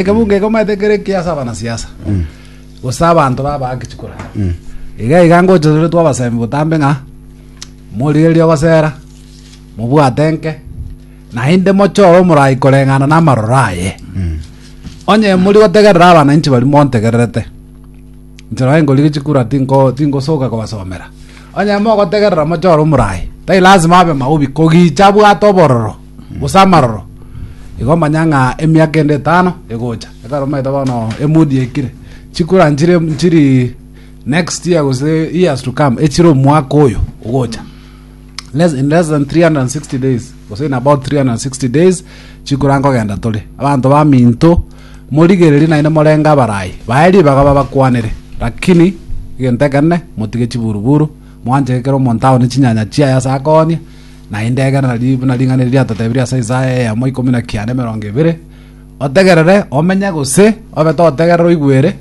Ekebunga eke omanyete kere ki ase abanasiasa gose abanto baba ake chikura iga iga ngochoretwe abasemi botambe ng'a morigererie ogosera mobwate nke naende mochore omorai koreng'ana na amaroro aye onye mori gotegerera abananchi baria montegererete inche nonye nkorigia chikura tinko tinkosoka kobasomera onye mogotegerera mochore omorai tari lasima abe maobi kogicha abwate obororo gose amaroro igo omanya ng'a emiaka ende etano egocha ekero omanyete bono emudi ekire chikura nchire nchiri next year gose years to come echire omwaka oyo ogocha less, in less than 360 days gose in about 360 days chikura nkogenda tore abanto ba minto morigererie naende morenge abarai bae ribaga babakwanere lakini egento ekenene motige chiburuburu mwanchekere omonto aone chinyanya chiaye ase akonie na indegera nari buna ring'ana riria riatotebirie ase Isaya eyemo ikomi na kianda emerongo ebere, Otegerere, omenye, gose obe totegerera oigwere,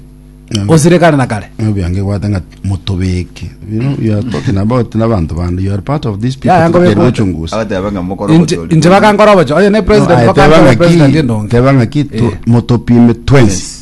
osirekane na kare. Ng'a obiange gwate ng'a motobeke. You know, you are talking about n'abanto bande. You are part of these people. Yeah, ngobekwa. Tukere ochunguzi. agateba ng'a mokoro Inche gochori. inche bakankora obocho. Oye ne No, president aye teba bakankora ng'a ki- president endonge. teba ng'a ki tu- Eh. motopime twensi.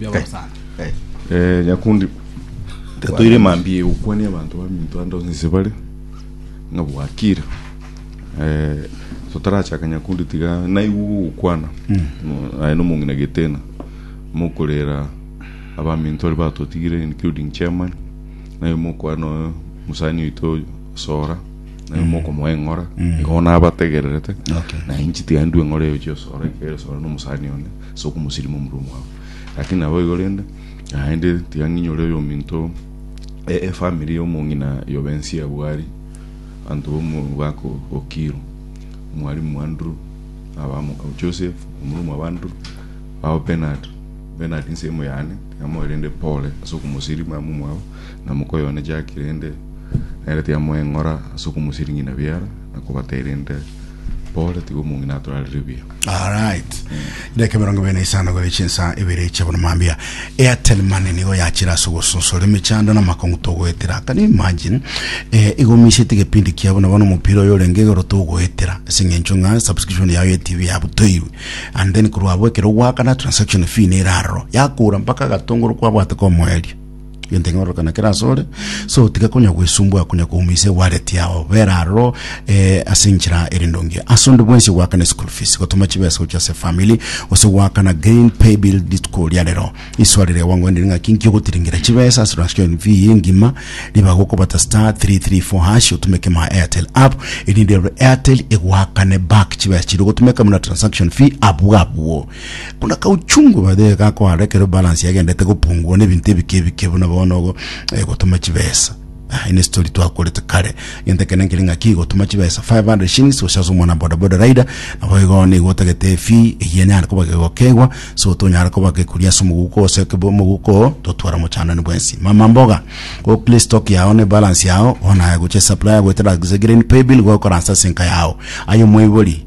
bi'aborosana. Eh, nyakundi tatoire mambia egokwania abanto baminto ande onsi ase bare ng'a bwakire Eh, so tarachaka nyakundi tiga naigwe gogokwana Mo- aye nomong'ina getena mokorera abaminto aria batotigire including chairman naye mokwana oyo mosani oito sora naye mokomoa eng'ora igo nabategererete Okay. naye nchitigani ndue eng'ora eyo chiosora ekere sora nomosani one ase okomosirima omorua omwabo. Lakini naboigo rende, naende tiga ng'inyore oyominto e- efamiri y'omong'ina yobe ense ya Bwari, abanto b'omogaka o- o Kiru, omwalimu Andrew, abamo- o Joseph, omorua omwabo Andrew, ababo Bernard, Bernard nsemo yane, tiga moe rende pole ase okomosirima momwabo, na moka oyo one Jack rende, nere tiga moe eng'ora ase okomosirigina biara, na kobatera inde pole, tiga omong'ina atorarire buya. Alright. Dakika mirongo ibere na isano gore chinsa ibere chia bono mambia. Airtel Money nigo yachira ase ogosusura emechando na amakong'u togoetera. Can you imagine? Eh, igo omiseti gepindi kia bono bono omopira oyo orenge igoro togoetera. Ase eng'encho ng'a subscription yao ya TV yabutoirwe. And then korwa abwo ekero ogwakana transaction fee nere aroro. Yakora mpaka agatongoro kwabwate komoeria. Gento ing'ororokana kera asore, so tiga konya gwesumbua konya koumise wallet yao, bera aroro eh, ase enchera ere ndonge. Ase onde bwensi goakana school fees, gotoma chibesa gochia ase family, gose goakana green pay bill rituko ria rero. Iso arere gwangoenderi ng'aki inki ogotiringera chibesa ase transaction fee eye engima, riba gokobata star 334 hash otumeke my Airtel app, erinde Airtel egoakane back chibesa chiria ogotumeka buna transaction fee abwo abwo. Buna kauchungu by the way gakoara ekero balance yagendete gopungua na ebinto ebike ebike buna bono ogo eh, gotuma chibesa Ah, ine story twakorete kare genta kene nkiri ng'aki gotuma chibesa 500 shillings gochaza omwana bodaboda rider nabo igo nigo otagete fee eyia nyare koba gegokegwa so tonyara koba gekuri ase omoguko ose kebo omoguko totwara mochando ni bwensi mama mboga go clear stock yao ne balance yao ona goche supplier gwetera green pay bill gokora ase enka yao ayo moibori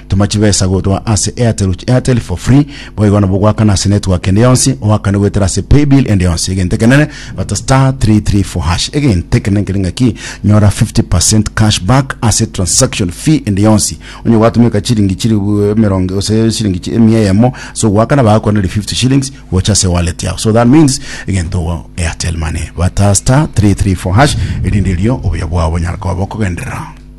Toma chibesa gotwa ase Airtel to Airtel for free. Boigo nabo gwakana ase network ende yonsi, oakane goetera ase paybill ende yonsi. Egento ekenene bata star 334 hash. Egento ekenene kere ng'aki nyora 50% cash back ase transaction fee ende yonsi. Onye gwatumeka chiringi chiri bu- emerongo ase chiringi chi- emia eyemo so gwakana bagakwaneri 50 shillings gocha ase wallet yao. So that means egento ogo Airtel money bata star 334 hash erinde erio obuya bwao bonyara koba bokogenderera.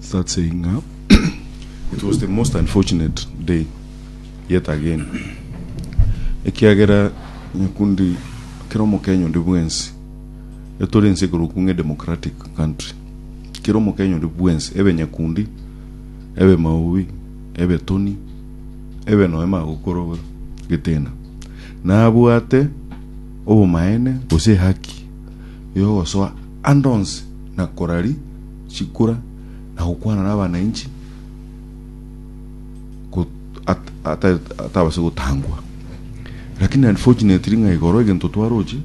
start saying ng'a it was the most unfortunate day yet again ekiagera nyakundi kera omokenya onde bwensi etore ense ekorokwa ng'a edemocratic country kera omokenya onde bwensi ebe nyakundi ebe maubi ebe toni ebe noe magokorobe getena nabwate obomaene gose ehaki yogosoa ande onsi na korari chikura na gokwana nabananchi atabase gotangwa lakini unfortunately ng'a igoro egento twaroche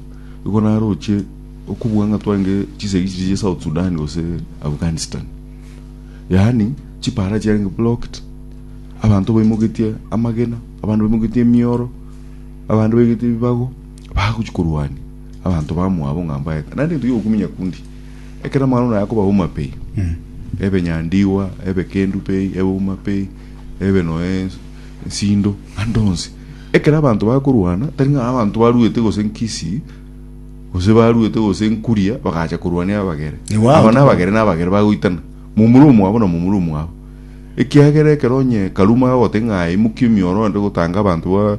igo naroche okobua ng'a twarenge chisegi chiche South Sudan gose Afghanistan yaani chipara chiarenge blocked abanto baimogetie amagena abande baimogetie emioro abande baigete ebibago bagochi korwania abanto bamwabo ng'a mbaye naende egento giokokumenya kundi Ekero amang'ana ona ayakoba auma pi, ebe nyandigwa, ebe kendu pi, ebe uma pi, ebe noe nsindo, ande onsi. Ekero abanto bakorwana, tari ng'a abanto baruete gose nkisi, gose baruete gose nkuria, bagacha korwania abagere. Igo Aba abanto- nabagere nabagere bagoitana, momura omwabo na momura omwabo. Ekiagera ekero onye Karuma agoteba ng'a aye imokia emioro ande gotanga abanto ba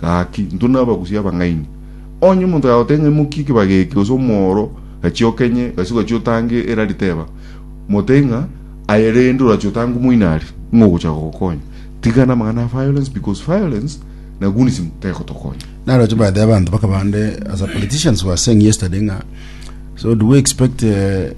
Gaki, intwe nabagusia abang'aini. Onye omonto agagotebia ng'a imokia ekebago eke gose omoro, gachia okenye, gasi ogachia otange erari teba, motebie ng'a aye rende orachia otange omoinari, ng'a ogocha gogokonya. Tigana amang'ana a violence because violence na gunisim tegotokonya. Naroche by the way abanto bakaba bande as a politicians were saying yesterday ng'a so do we expect eh,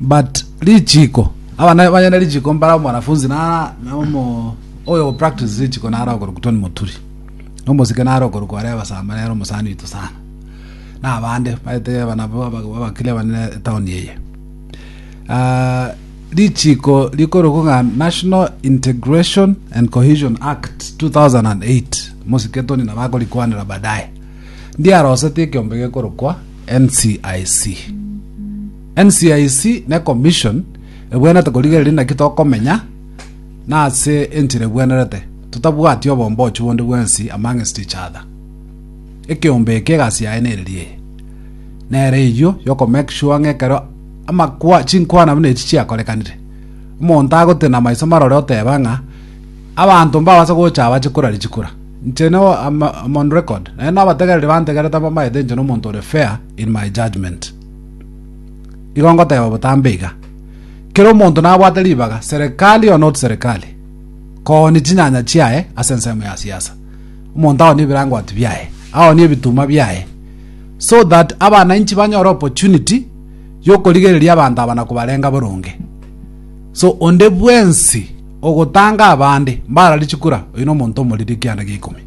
But richiko abana banyene richiko mbara mwanafunzi na na omo oyo go practice richiko na ara okoruku toni moturi no mosike na ara okoruku are abasama na ara omusani witu sana na abande baete abana bo abakile abane town eye Ah, richiko rikoruku ng'a national integration and cohesion act 2008 mosike toni na bakorikwanera baadaye ndiarosete ekiombe gekorokwa NCIC. NCIC ne commission ebwenerete korigereria naki tokomenya na ase enchera ebwenerete totabwati obombochu bonde bwensi amongst each other. Ekeombe eke egasi yaye nereri eye. Nere eywo yoko make sure ng'a ekero amakwa chinkwana buna echi chiakorekanire omonto agotenena maiso marore oteba ng'a Abanto mbabase gocha abache korari chikura. Inche ne am on record, naende nabategereri bantegerete mbamaete inche nomonto ore fair in my judgment. Igo ngoteba botambe iga, kera omonto nabwate ribaga, serikali or not serikali, koonia chinyanya chiaye ase ensemo ya siasa. Omonto aonie ebirangwati biaye, aonie ebituma biaye, so that abananchi banyore opportunity yokorigereria abanto aba na kobarenga boronge. So onde bwensi ogotanga abande mbarari chikura, oyio nomonto omoriri ekianda gia ikomi.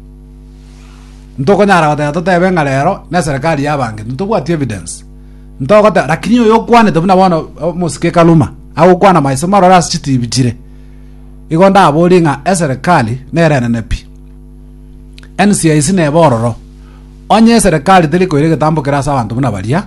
Ntokonyara goteba totebe ng'a rero neserikari y'abange, ntitobwati evidence. Ntogoteba lakini oyo okwanete buna bono omosike ekaruma agokwana maiso marore ase chitibi chire, igo ndaborie ng'a eserikari nere enene pi. NCIC neba ororo. Onye eserikari teri koira egetambo kere ase abanto buna baria,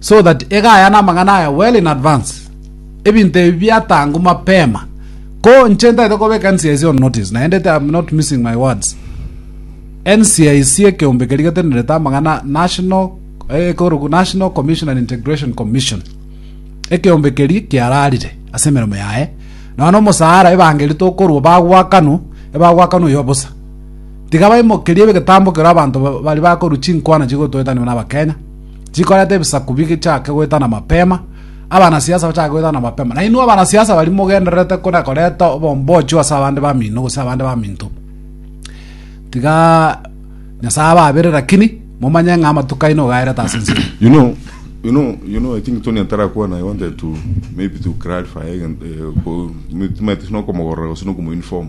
so that egayane amang'ana aya well in advance, ebinto ebi biatangwe mapema, ko inche ntaete kobeka NCIC on notice, naende I am not missing my words. NCIC ekeombe keria getenerete amang'ana National eh, ekoroku National Commission and Integration Commission ekeombe keria kiararire ase emeremo yaye nonya na omosara ebangeri tokorwa bagwakanwa ebagwakanwa oyo bosa tiga baimokerie egetambo kero abanto ba- bari bakorwa chinkwana chigotoetanwa na abakenya chikoreta ebisaku bichake goetana mapema abanasiasa bachake goetana mapema na inwe abanasiasa bari mogendererete kona koreta obombochu ase abande bamino gose abande baminto tiga nyasaye ababere lakini momanye ng'a amatuko aino ogaerete ase ense you know you know you know i think tony atarakwana i wanted to maybe to clarify again eh, ko- mi- timate sino komogorora gose no kumoinform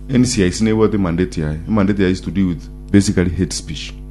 ncic nebwate mandate yaye mandate yaye is to deal with basically hate speech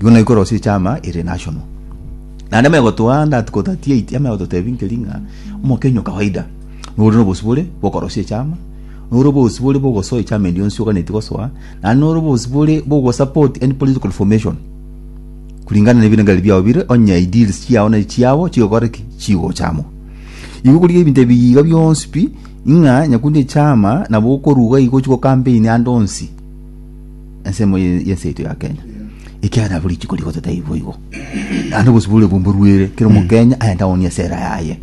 Igo naikwa rosie echama ere national. Naende amegotoa that ko 38 amegototebia nkeri ng'a omokenya o kawaida nore nobosibore bokorosia echama, nore obosibore bogosoa echama eria onsi oganeti gosoa, naende nore obosibore bogo support any political formation kulingana nebirengererio biao bire onye ideals chiao nari chiabo chigokora ki? Chigochamwa. Igo okorigia ebinto ebi iga bionsi pi ng'a nyakundi echama nabo okoruga igo ochi gocampaign ande onsi. Ensemo ye- y'ense yaito ya Kenya ekiagera buri rituko rigote taibi boigo naende obosibore obwo mboruere kera omokenya aende aonie esera yaye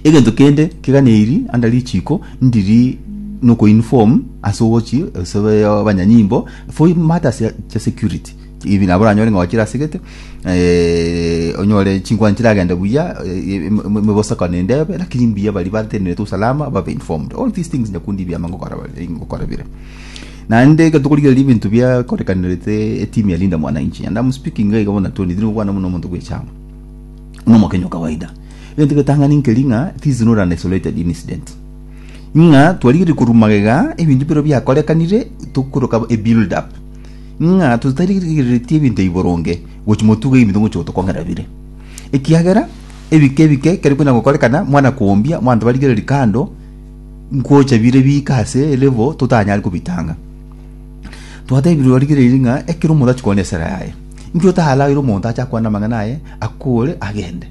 egento kende keganeri anda richiko ndiri noko inform ase ogochi ase ba- abanyanyimbo for matters ya- chia security even nabo oranyore ng'a gwachire ase gete eh, onyore chinkwana chiragende buya eh, em- em- emebosakano ende ebe lakini mbuya baria batenerete usalama babe informed all these things nyakundi ebiama ngokora bare- ngokora bire Naende ekero tokorigereria ebinto biakorekanerete etimu ya Linda Mwananchi, and am speaking iga iga bono Tony, tindi kobwana buna omonto bw'echaama, buna omokenyi o kawaida. Egento getang'ani nkeri ng'a this is not an isolated incident. Ng'a twarigereiri korwa magega ebinto biro biakorekanire tokoroka a build up. Ng'a totarigereretie ebinto ebi boronge gochi motuga ebinto moche gotokong'era bire. Ekiagera ebike ebike ekero bikonya gokorekana mwana kombia mwanto barigereri kando nkocha bire biika ase levo totanyare kobitanga. Twatebirwe barigereiri ng'a ekero omonto achia konya esera yaye, inki otaraire omonto ache akwane amang'ana aye, akore agende.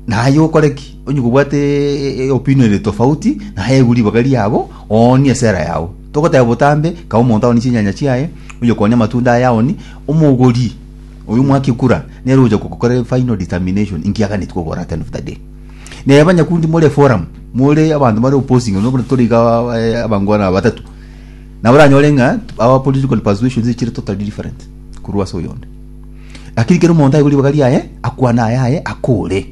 Naye okore ki? Onye kobwate opinion ere tofauti, naye egwe ribaga riabo, oonie esera yao. Togoteba botambe, kaba omonto aoni chinyanya chiaye, oyo konya amatunda aye aoni, omogori, oyo mwakigura, nere ogocha gokorera final determination, inki aganetie kogora at the end of the day. Naye abanyakundi more eforamu, more abanto bare opposing, no buna tore iga aba- eh, abangwana aba batato, nabo oranyore ng'a our political persuasions chire totally different korwa ase oyonde. Lakini kera omonto aigwe ribaga riaye, akwane ayaye, akore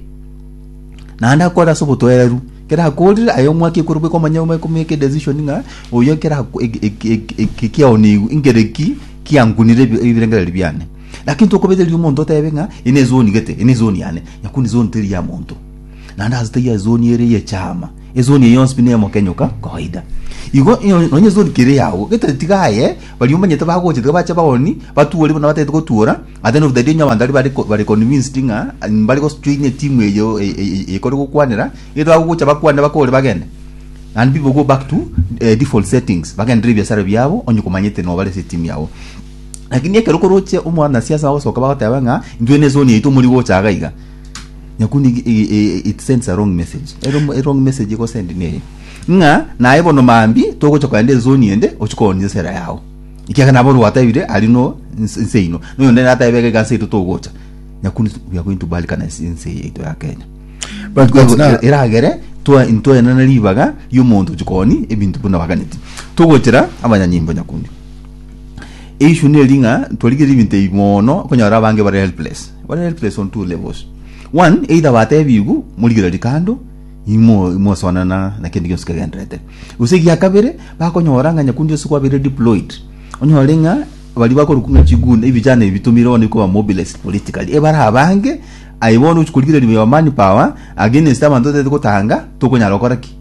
naende akore ase obotoereru kera akorire aye omwaka ekero bweka omanye ome- komake edecision ng'a oyo kera ako- eg- eg- eg- eg- eki kiaonigwe nkere ki kiankunire ebi- ebirengererio biane Lakini tokobete riria omonto otebe ng'a eye nezoni gete, eye nezoni yane, nyakuna ezoni teri ya monto. Naende ase taiyo ezoni ere y'echaama, ezoni eye yonsi pi nemokenyoka kawaida. Igo ino- nonye ezoni kere yao, gete tiga aye, baria omanyete bagocha tiga bache baoni, batuore buna batagete gotuora, ate noruta erio onye abanto aria bare ko- bare convinced ng'a mbare gojoina etimu eyo e- e- e- ekore gokwanera, gete bagogocha bakwane bakore bagende. And people go back to eh, default settings, bagenderere ebiasara biabo, onye komanyete nobare ase etimu yabo. Lakini ekero koroche omwanasiasa agosoka bagoteba ng'a intwe ne zone yaito mori gocha iga iga. Nyakundi igi- igi- i- it sends a wrong message. Ero a wrong message egosend neye. Ng'a naye bono mambi togocha kogenda ezone ende ochikoonye esera yao. Ikiagera nabo rwatebire ari no nse nse ino. Noyo nde natebe iga iga nse yaito togocha. Nyakundi we are going to balkanize ense yaito ya Kenya. But Ego- that's not- eragere twa intwaenana ribaga y'omonto chikoni ebinto buna baganeti togochera abanyanyimbo nyakundi Issue neri ng'a twarigereria ebinto ebi mono okonyora abange bare helpless. Bare helpless on two levels. One, either batebiwu morigererie kando imo imosonana na kende gionsi kegenderete. Gose egia kabere bakonyora ng'a nyakundi ase kwabeire deployed. Onyore ng'a bari bakorokwa ng'a chigunda ebijana ebi bitumire bono bikoba mobilized politically. Ebare abange aye bono ochi korigereria your man power against abanto otaete gotanga tokonyara gokora ki?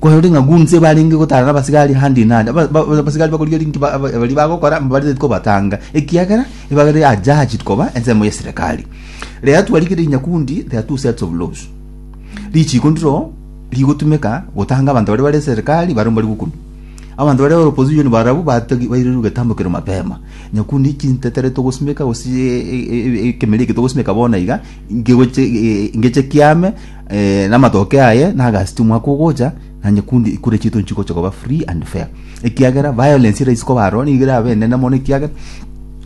Kwarorire ng'a gunse ebarenge gotara nabasigari handi nandi, aba- ba- abasigari bakorigereria inki ba- aba- baria bagokora, mbariteti kobatanga, ekiagera ebagere are judged koba ensemo ye serekari. Rero twarigereria Nyakundi, there are two sets of laws. Richiko ndiro rigotumeka gotanga abanto baria bare serekari baria mbari gokunu. Abanto baria bare opposition barabwo batagi bairirwe getambo kero mapema. Nyakundi chintetere togosimeka gose e- e- e- ekemeri eke togosimeka bono iga, ngegoche e- e- ngeche kiame, Eh, namatoke aye nagasiti omwaka ogocha na nyekundi ikure chitu nchikocha koba free and fair ekiagera violence eraisi koba aro nigo erabe enene mono ekiagera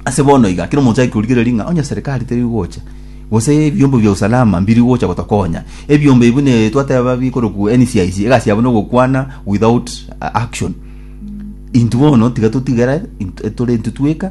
ase bono iga kero omonto akorigereria ng'a onye serikali teri gocha gose ebiombo bia usalama mbiri gocha gotokonya ebiombo ebi bune twateba bikoroku NCIC egasi yabo nogokwana without uh, action intu bono tiga totigere int- tore intwe tweka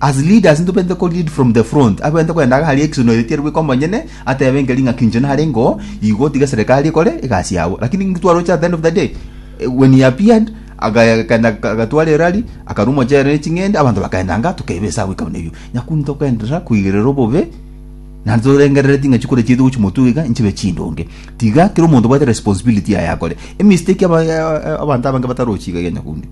As leaders ntobegete ko lead from the front, abegete kogenda iga haria ekisunuro ere tiari bweka omonyene atebe enke ring'aki inche nare ingo igo otige eserekari ekore egasi yabo. Lakini ntwaroche at the end of the day eh, when he appeared agakenda agatwara erari akarwa omochere ne ching'ende abanto bakagenda nga tokeba esa goika buna erio nyaku ntogenderera koigerera obobe na torengerere ting'achi kore chiaito gochi motuga iga nchibe chindonge tiga kera omonto obwate responsibility yaye akore emistake aba- eh, eh, abanto abange batarochi iga ya nyakundi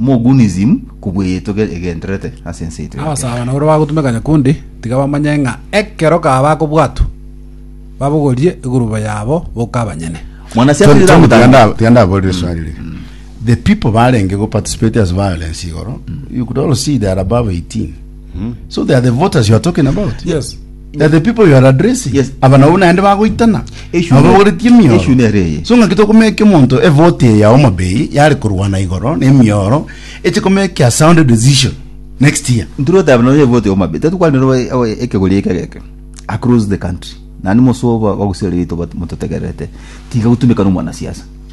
Mogunism kobua eyeito egendererete ase ense yaito ya kera. Abasaaba naboro bagotumeka nyakundi, tiga bamanye ng'a ekero kaba bakobwatwa, babogorie egurubo yabo boka abanyene. Mwanasiasa Tony, Tony, tiga Nyiramutangi. nda- tiga ndaborere eswali ri. The people barenge go participate as violence igoro, you could all see they are above 18. So they are the voters you are talking about. Yes. They are the people you are addressing. Yes. Aba nabo naende bagoitana. Issue Aba ne- bagoretie issue emioro. nere eye. So ng'aki tokomeka omonto evote eye ya Homa Bay yare korwana igoro na emioro eche komeka a sound decision next year. Nturo tabe no yevote yo mabe. Tatu kwani ro ekegori eke geke. Across the country. Nani mosoba bagusere rito bat mutotegerete. Tiga gutumika no mwana siasa.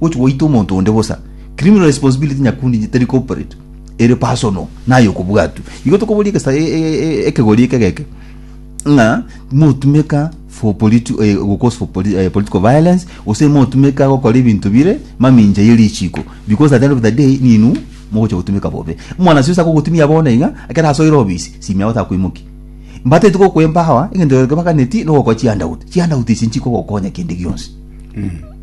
gochia goita omonto onde bosa. Criminal responsibility nyakundi inche teri corporate, ere personal naye okobwatwa. Igo tokoboria egesa- e- e- e- ekegori eke egeke ng'a motumeka for politi- eh, gocause for poli- eh, political violence gose motumeka gokora ebinto bire mamincha ye richiko because at the end of the day ninwe mogochia gotumeka bobe. Omwanasi onsi akogotumia bono iga ekero asoire obisi simi yago takoimoki. Mbatete gokoe empower egento geke baganeti nogokora chihandout, chihandout echi nchikogokonya kende gionsi.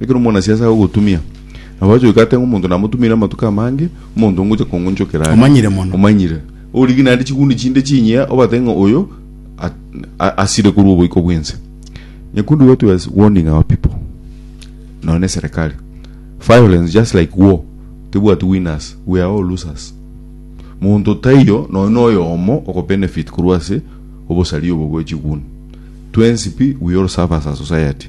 Ekero omonasiasi agogotumia, nabo ache goika ateba ng'a omonto namotumiire amatuko amange, omonto ngocha kongonchokera are. Omanyire mono. Omanyire. Origie naende chiguni chinde chinyia, obatebe ng'a oyo a- a- asire korwa oboiko bw'ense. Nyakundi what was warning our people, nonya na eserekari. Violence, just like war, tebwati winners, we are all losers. Monto taiyo nonya na oyomo okobenefit korwa ase obosaria obo bwe chiguni. Twensi pi, we all suffer as a society.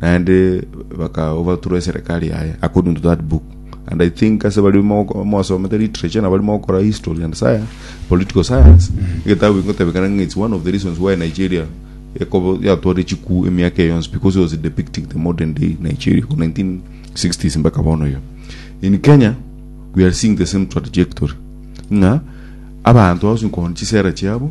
naende baka overthrow eserekari yaye according to that book and i think ase bari moko- mwasomete literature na bari mogokora history and science political science egetabu ingotebekana ng'a it's one of the reasons why nigeria ekobo yatware chikuu emiaka eye yonsi because it was depicting the modern day nigeria from 1960s mpaka bono iga in kenya we are seeing the same trajectory ng'a abanto bagosinkohon chisera chiabo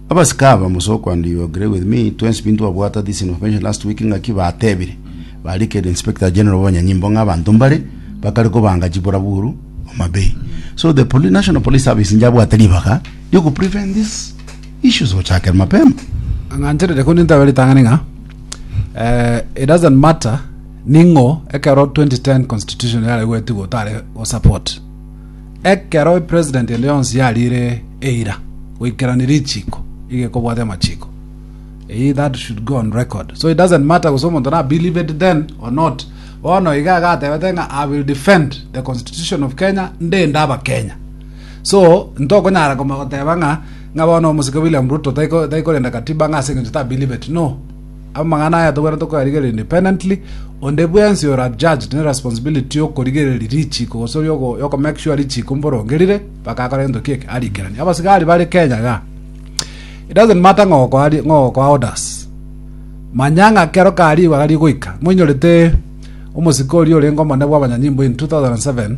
Abasike aba, Musoku and you agree with me, twensi binto twabwata this information last week ng'aki batebire barikeri Inspector General b'abanyanyimbo ng'a abanto mbare bakare kobanga chiburaburu Homa Bay. So the poli National Police Service inche abwate ribaga rioku prevent these issues gochakera mapema. ang'ancherere kore nintaba ritang'ani ng'a eh, it doesn't matter ning'o ekero 2010 constitution yare gwetigwa otare go support Ekero epresident ende yonsi yariire eira goikerania richiiko, iga ekobwata amachiiko. Eyio that should go on record. So it doesn't matter gose omonto na believed then or not. Bono iga agatebete ng'a I will defend the constitution of Kenya ndende abakenya. So ntokonyara koma goteba ng'a ng'a bono omosike William Ruto taiko taikorenda katiba ng'a ase eng'encho ta believed. No. Amang'ana aya togwenerete koyarigereria independently, onde bwensi ore adjudged ne responsibility y'okorigereria richiko gose y'okomake sure richiko mborongerire mpaka akore gento kieke arikeranie. Abasigari bare Kenya ga. It doesn't matter ng'o okoa ng'o okoa orders. Manya ng'a kero kariigwa gari goika. Moinyorete omosike oria orenge omonene bw'abanyanyimbo in 2007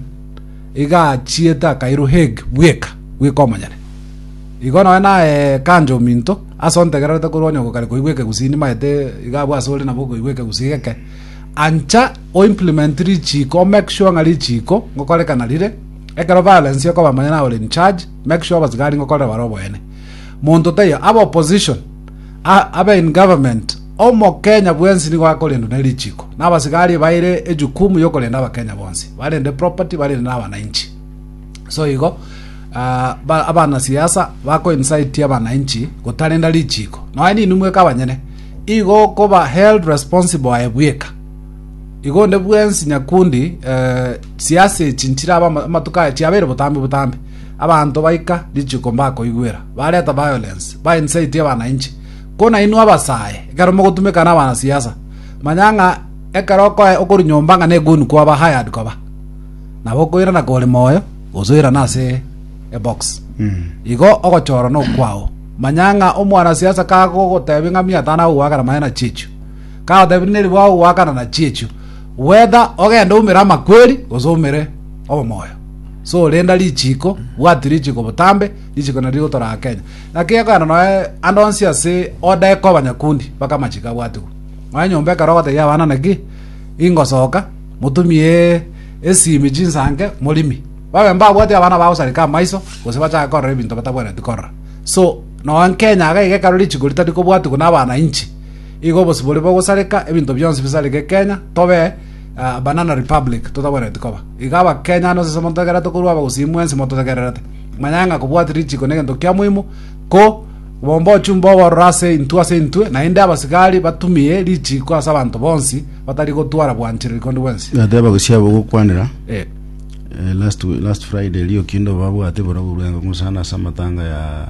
iga achiete akairwa Hague bweka bweka omonyene. Igo noe naye kanjo ominto Ase ontegererete korwa onye ogokare koigwa ekegusii nimaete iga abwo ase ore nabo okoigwa ekegusii geke, ancha o implement richiiko o make sure ng'a richiiko ngokorekana rire, ekero violence ekoba manya naye ore in charge, make sure abasigari ngokorera bare oboene. Monto taiyo, abe opposition, abe in government, omokenya bwensi nigo akorendwa ne richiiko. Na abasigari baire ejukumu yokorenda abakenya bonsi, barende property, barende na abanainchi. So igo ah, ba- abana siasa bakoincite abananchi gotarenda richiko noe ninwe mweka abanyene igo koba held responsible aye bweka igo nde bwensi nyakundi eh, siasa echi nchiraba ama- amatuko aya chiabeire botambe botambe abanto baika richiko mbakoigwera bareta violence baincite abananchi kona inwe abasae ekero mogotumeka na abana siasa manya ng'a ekero okoe- okori nyomba ng'a negonu kwaba hired koba Nabo okoirana kore moyo, gose oirane ase ebox. Igo ogochorwa nokwao. Manya ng'a omwanasiasa kagogotebi ng'a mia tano agogoakana maene na chiechio. Kagotebi neri bwagogoakana na chiechio. Whether ogende oumere amakweri gose oumere obomoyo. So renda richiko, bwati richiko botambe, richiko nari rigotora aa Kenya. Naki ekogenda noe ande onsi ase oda ekoba nyakundi mpaka amachiko abwatigwe. Nonya nyomba ekero ogotebia abana naki ingosoka, Motumie esimi chinsanke, morimi. Babe mbabwati abana bagosareka amaiso, gose bachake korora ebinto batabwenereti korora. So, noa nkenya iga iga ekero richiko ritari kobwatigwa na abana inche, igo obosibori bogosareka, ebinto bionsi bisareke Kenya, tobe ah, banana republic totabwenereti koba. Iga abakenya ande gose semonto ekero tokorwa abagusii mwensi mototegererete. Manyage ng'a kobwati richiko negento kia moimo, ko Obombochwa mbobororo ase intwe ase intwe, naende abasigari batumie richiiko ase abanto bonsi batari gotwara bwanchera rikondi bwensi. Ndateba gosiabo gokwanera Eh, eh, last wi- last Friday rio kinde obabwate bora burwengo ngusana ase amatanga ya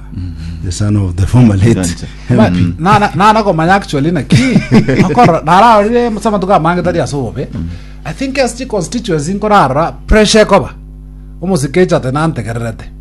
the son of the former late Ganja. ba- MP. na- na- nana komanya actually naki akora nararire ase amatuko amange tari ase obobe i think SG constituency nkorara pressure ekoba omosikecha ate nantegererete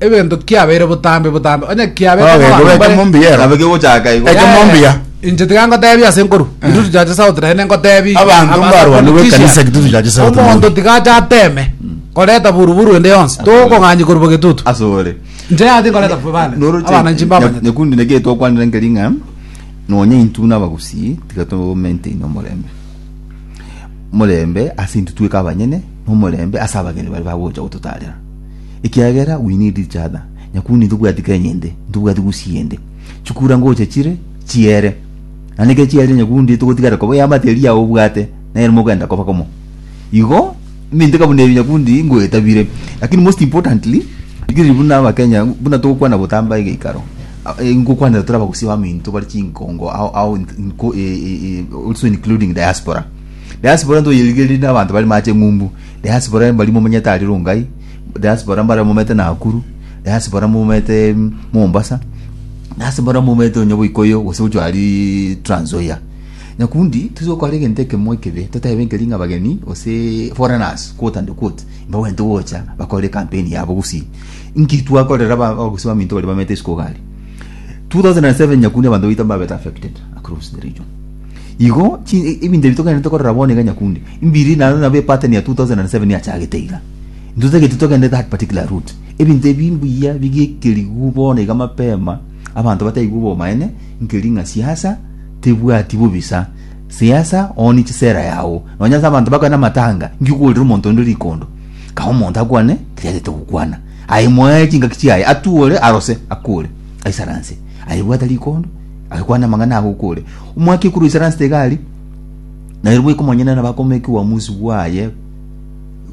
Egento kiabeire botambe botambe onye kiabe Oge, kama oge, bare- chomombi yero. Nabe kegochaka igo. Echo mombi ya. Inche tiga ngotebia ase nkoru gitutu chia chisauti naende ngotebia Abanto mbarwane gwe ekanisa gitutu chia chisauti omonto mono. tiga acha ateme koreta buruburu ende yonsi tokong'anyi korwa gitutu Asore. inche yati nkoreta bane abana inchi mbabanyete nyakundi neke twakwanire nkeri ng'a nonya intu na abagusii tiga to maintain omorembe omorembe ase intwe tweka abanyene na omorembe ase abageni baria bagocha gototarera ekiagera we need each other, nyakuni ntobwati Kenya ende, ntobwati Gusii ende, chikura ngocha chire chiere, na neke chiere nyakundi togotigara koba ya materi yao obwate nere mogenda koba komo. Igo minte kabuna ebi nyakundi ngoetabire, lakini most importantly rigirii buna abakenya buna togokwana botamba egeikaro a- e, ngokwanera tore abagusii baminto bare chinkongo ao, ao int- nko, e, e, e, also including diaspora diaspora ntoyerigereria na abanto bare mache ng'umbu Diaspora mbari momanyete aria Rongai, diaspora mbare momanyete Nakuru, diaspora momanyete Mombasa, diaspora momanyete onye Boikoyo gose gochwa aria Trans Nzoia. Nyakundi tose gokora egento ekemo ekebe totebe nkeri ng'a abageni gose foreigners quote and quote mbabwenerete gocha bakore campaign yabo gusii. Nki twakorera aba gose baminto baria bamanyete isiko iga aria? 2007 Nyakundi abanto baito mbabete affected across the region. Igo chi ebinto ebi togenderete korora bono iga nyakunde mbiri naro nabo epateni ya 2007 yachagete iga. Intotageti togende that particular route. Ebinto ebi mbuya bigekerigwe bono iga mapema abanto bataigwe obomaene nkeri ng'a siasa tebwati bobisa. Siasa one chisera yao. Nonya ase abanto bakore namatanga nki okoorera omonto onde rikondo. Kae omonto akwane keri agete gokwana. Aye moe chingaki chiaye atuore arose akore aisaranse. Aye bwata rikondo Agakwana amang'ana aya gokore, Omwaka ekuru isare anse tiga aria, na ere bweka omonyene nabo akomekigwa omosi bwaye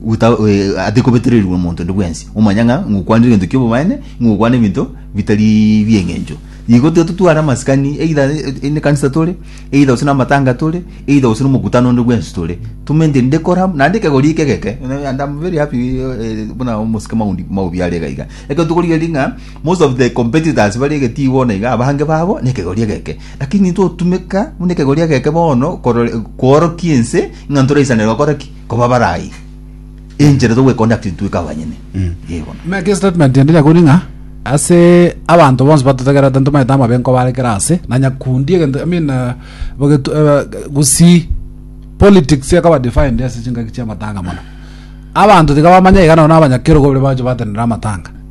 gota- eh, atekobetererigwa omonto onde bwensi omanya ng'a ngokwanire egento ki'obobaene, ng'a ogokwana ebinto bitari bi'eng'encho. Igo tiga totware amasikani either eh, nekanisa tore, either gose namatanga tore, either gose nomokutano onde bwensi tore, tomaintain nde kore amo, naende ekegori eke egeke, and am very happy eh, buna omosike Maundi Maubi are iga iga, ekero tokorigereria ng'a. Most of the competitors bare egetibo na iga abange babo nekegori egeke. Lakini intwe otumeka buna ekegori egeke bono korore- koorokia ense ng'a ntoraisanera gokora ki? Koba barai. Enchera togweconduct intwe ka abanyene. Ee bono. Make statement ende nyakuri ng'a ase abanto bonsi batotegerete ntomaete amabe nkobarekera ase na nyakundi egento I mean eh, bogetu- eh, gusii politics ekoba defined ase chingaki chiamatanga mono abanto tiga bamanya iga nabo na abanyakerogo baria bagocha batenena amatanga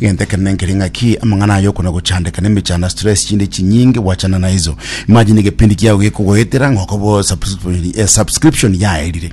Egento ekenene nkere ng'aki, amang'ana aye okona gochandeka nemechando, stress, chinde chinyinge gwachana naiso. Imagine egepindi kiago gekogoetera ng'a okoba o subscription- eh, subscription yaerire.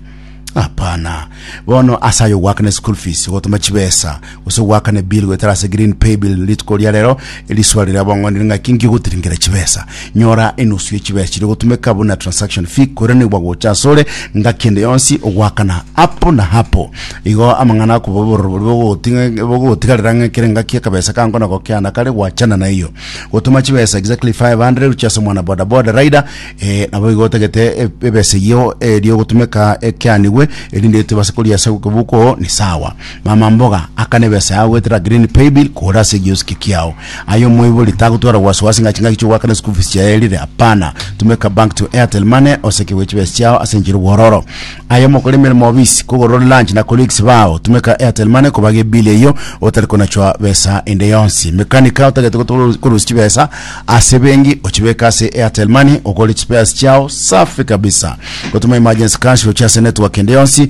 Hapana. Bono ase aye ogoakana school fees, gotoma chibesa, gose goakana ebill goetera ase green pay bill, rituko ria rero eriswaro riria bong'ondi ning'aki nki ogotiringera chibesa. nyora enusu ye chibesa chiri gotumeka buna transaction fee koiranigwa gocha asore ngaki ende yonsi ogwakana apo na hapo igo amang'ana akobobororo bori bogogotinga- bogogotigarera ng'a kere ngaki akabesa kango nako keana kare gwachana na eyo gotuma chibesa exactly 500 gochia ase omwana boda boda rider eh, nabo igo otagete e- ebesa eyio erio gotumeka ekeanigwe erinde etebase koria ase okobuko ni sawa Mama mboga akane ebesa yao goetera green paybill kore ase egiosiki kiao. Aye omoibori tagotwara wasiwasi ng'a chingaki chi'ogoakana school fees chiaye erire, hapana. Tumeka bank to Airtel Money osekerwe chibesa chiao ase enchera obwororo. Aye omokora emeremo obisi, kogorore lunch na colleagues bao, tumeka Airtel Money kobaga ebill eyio otari konachwa besa ende yonsi. Mekanika otagete gotu- korusia chibesa ase ebenki ochibeke ase Airtel Money ogore chispares chiao safi kabisa. Gotuma emergency cash gochia ase network ende yonsi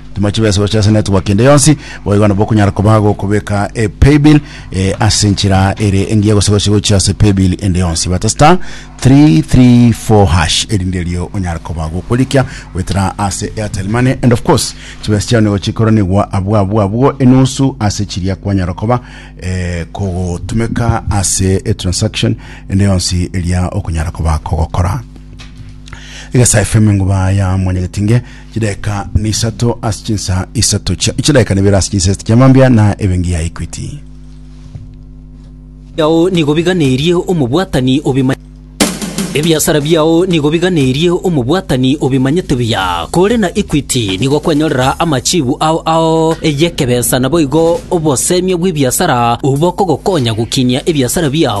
Timochi bwese gochesa network ende yonsi boigo nabo okonyara koba gokobeka e paybill e, ase enchera ere engiya gose gose gochia ase paybill ende yonsi bata star 334 hash erinde erio onyara koba gokorikia goetera ase airtel money and of course chibesa chiao nigo chikoranigwa abwo abwo abwo enusu ase chiria kwanyara koba eh, kogotumeka ase e transaction ende yonsi eria okonyara koba kogokora egesa fm nguba ya mwenye getinge Chidaeka ne isato ase chinsa isato chia chidaeka nebere ase chinsa isato chia mambia na ebengi ya Equity. biao nigo biganerie omobwatani obima Ebiasara biao nigo biganerie omobwatani obimanyete buya. Kore na Equity nigo kwanyorera amachibu ao ao y'ekebesa naboigo obosemia bw'ebiasara obo bokogokonya gokinia ebiasara biao.